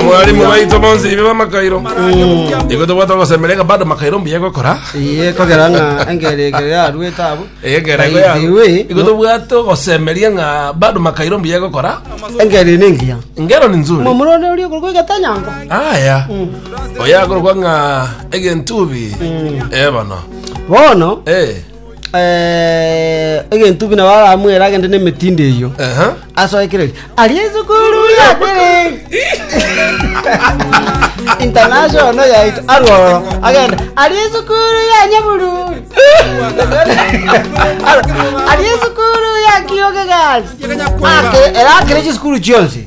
mwalimu baito bonsi ibe bamakairo igo tobwate ogosemereka bado makairo mbuya gokora iye kogera ng'a engeri egere yarwete abo egera igo ya- Iwe, igo tobwate ogosemeria ng'a bado makairo mbuya gokora engeri ningiya ngero ni nzuri momurone oria okorwa egetanyango aya oyakorwa ng'a egentubi ebono bono Eh. eh, egentubi nabo aramwere agende n'emetinde eyio Aha. asoekereri ari esukuru yatere international no yaito aroro agenda ari esukuru ya nyabururi Aro, ari esukuru ya kiyoge gasi Ake- era akere chisukuru chionsi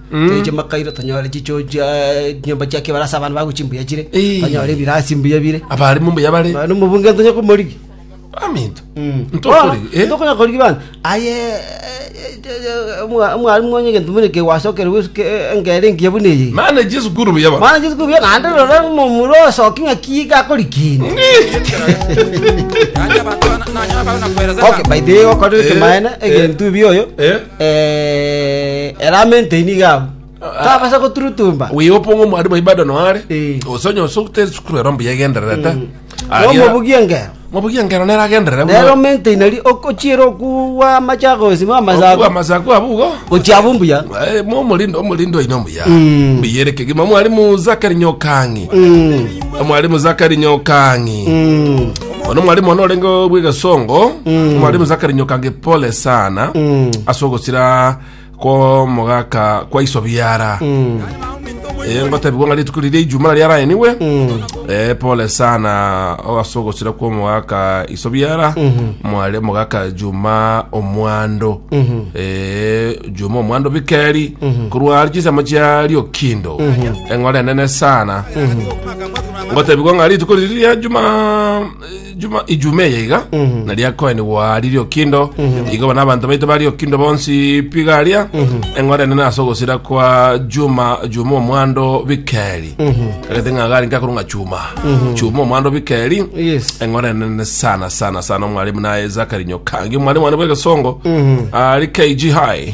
Toiche makairo, tonyore chichoo chia chinyomba chia kebaro ase abana bago chimbuya chire, Ee. tonyore ebirasi mbuya bire. Abarimo mbuya bare. Naende omobunge ntonya komorigia. Aminto. Ntokore. Eh. Tokonya korigi bana. Aye omwarimu onye gento buna kegwasokera bwesuke engere engiya buna eye. Mana Jesu kuru buya bare. Mana Jesu kubuya naende rora ng'uma omura osoki ng'aki iga akori kende. Okay, by the way okorire ekemaene Eh. egento ebi oyo. Eh. Ere amentei nigo abwo. Tobasa goturutumba. Wigo opong'o omwarimu aye bado noare Eh. gose onye ose ote esukuru ero mbuya egendererete Nomobugie engero. mobugi engero nere agenderere Nere buna omentei nari okochiera okugwa amachako gose okugwa amasago. amasaku abwo igo Gochia abwo mbuya. Eh, mo omorindo omorindo oino mbuya Mm. mbuya ere kegima omwarimu zakari nyokang'i Mm. omwarimu zakari nyokang'i Mm. Ono mwalimu ono orenge bw'egesongo mwalimu Zakari Nyokange pole sana ase ogosira kw'omogaka kwa iso biara Eh, ngotebigwa ng'a rituko riria ijuma naria araeniwe Eh, pole sana o ase ogosira kw'omogaka iso biara mware mogaka juma omwando Eh, juma omwando bikeri korwa chisemo chia riokindo eng'ora enene sana ngotebigwa ng'a rituko riri ria juma juma ijume eye iga na riakoenigwa riria okindo igo bana abanto baito bari okindo bonsi pigaria eng'ora enene ase ogosira kwa juma juma omwando bikeri kagete ng'a gari ngakuru ng'a chuma chuma omwando bikeri Yes. eng'ora enene sana sana sana omwalimu naye zakari nyokangi omwalimu wane bw'egesongo ari kg high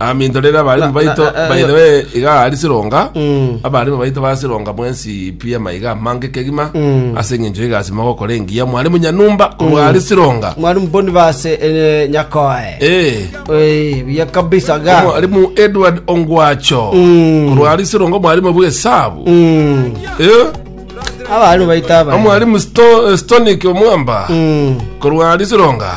Aminto rero abarimu baito by the way iga ari sironga Mm. abarimu baito ba sironga mwensi pia maiga amange kegima Mm. ase eng'encho egasi mogokora engiya mwarimu nyanumba korwa ari sironga mwarimu bonivase eh, nyakoe Eh, Eh, buya kabisa ga mwarimu edward ongwacho Mm. korwa ari sironga mwarimu bw'esabu Mm. Eh, abarimu baito aba omwarimu Sto- stonic omwamba Mm. korwa ari sironga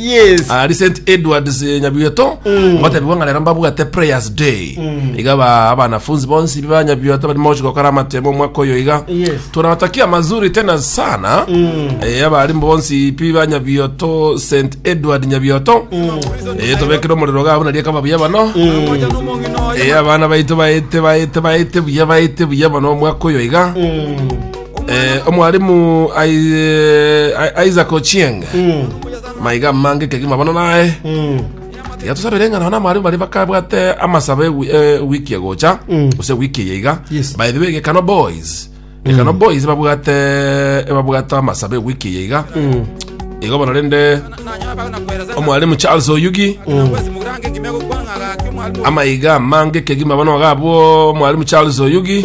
Yes. Ah, recent edwards eh, nyabioto batebigwa ng'a rero mbabwate prayers day iga ba abanafunzi bonsi biba nyabioto bari mochi gokora amatemo omwaka oyo iga Yes. tunawatakia mazuri tena sana eh, abarimbo bonsi pi ba nyabioto st edward nyabioto eh, tobekire omorero gabo naria kaba buya bano eh, abana baito baete baete baete buya baete buya bano omwaka oyo iga Eh, omwalimu Ai- eh, isaac ochieng maiga mange kegima bono naye tiga tusabere eng'ana na amwalimu bari bakabwate amasaba ewi- eh, wiki egocha gose wiki eye iga Yes. by the way gekano boys gekano boys babwate babwate amasaba ewiki eye iga igo bono rende omwalimu charles oyugi amaiga mange kegima bono gabwo omwalimu charles oyugi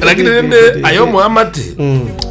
Lakini rende aye omoamate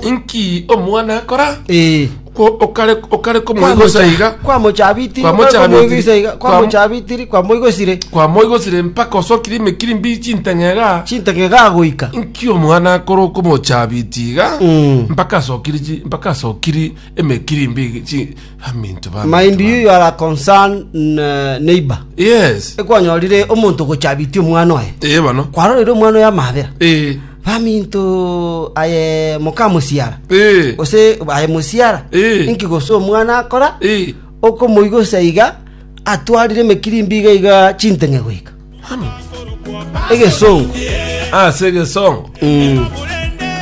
inki omwana akora Eh. kwo okare okare komoigosa iga kwamochabitiri Kwamochabitiri. kwamoigosa iga Kwam- kwamochabitiri kwamoigosire kwamoigosire mpaka osokire emekiri mbi chinteng'ega chintege gagoika inki omwana akora okomochabiti iga Mm. mpaka asokiri chi- mpaka asokiri emekiri mbi chi- Aminto ba Mind you, you are a concerned uh, neighbor. Yes. Ekwanyorire omonto gochabitie omwana oye. Eh bono. Kwarorire omwana oye amabera. Eh. Baminto aye moka musiara. Eh. Ose aye musiara. Eh. Inki gose omwana akora? Eh. Okomoigosa iga atwarire emekirimbi iga iga chinteng'e goika. Ami. Egesongo. Ah, se gesongo. Mm.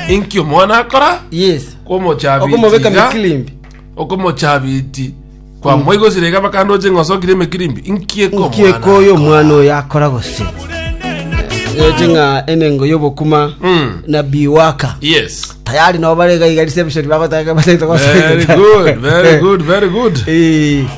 Inki omwana akora? Yes. Komochabitiga. Okomobeka mekirimbi. Okomochabiti kwamoigosire iga bakande oche ng'a osokire emekirimbi. Inki eke Inki eke omwana oyo omwana oyo akora gose? Ereti ng'a enengo y'obokuma Mm. na biwaka. Yes. Tayari nabo bare iga iga reception bagotaka Very good, very good, very good. Eh.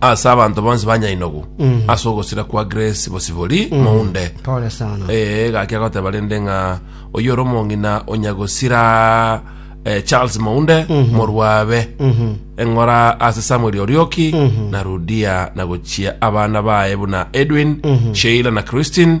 ase abanto bonsi ba nyainogo ase ogosira kwa grace bosibori mounde Pole sana. ee gaki agoteba rende ng'a oyo ore omong'ina onyagosira eh, charles mounde morwabe eng'ora ase samuel orioki na rudia na gochia abana baye buna edwin sheila na christine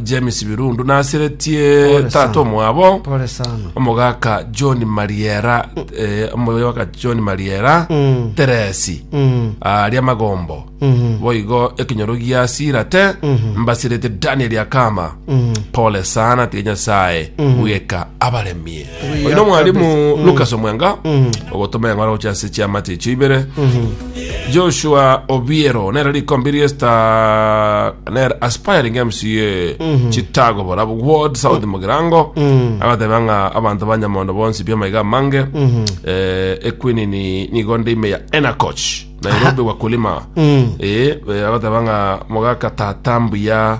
James Birundu naseretie Pole tata sana. omwabo Pole sana. omogaka John Mariera eh, omogaka John Mariera Mm. Teresi Mm. aria magombo Mhm. boigo ekinyoro gia sirate mbasirete Daniel Akama Mhm. pole sana tiga nyasaye bweka abaremie Oyo nomwalimu Lucas Omwenga ogotoma eng'ora gochia ase chiamate echio ibere Joshua Obiero nere rikombe riesta nere aspiring MCA Chicago bora Ward South Mugirango agateba ng'a abanto ba Nyamondo bonsi bia maiga amange eh, ekwinini nigo nde ime ya Enacoch Nairobi wakulima eh, eh, agateba ng'a mogaka tata mbuya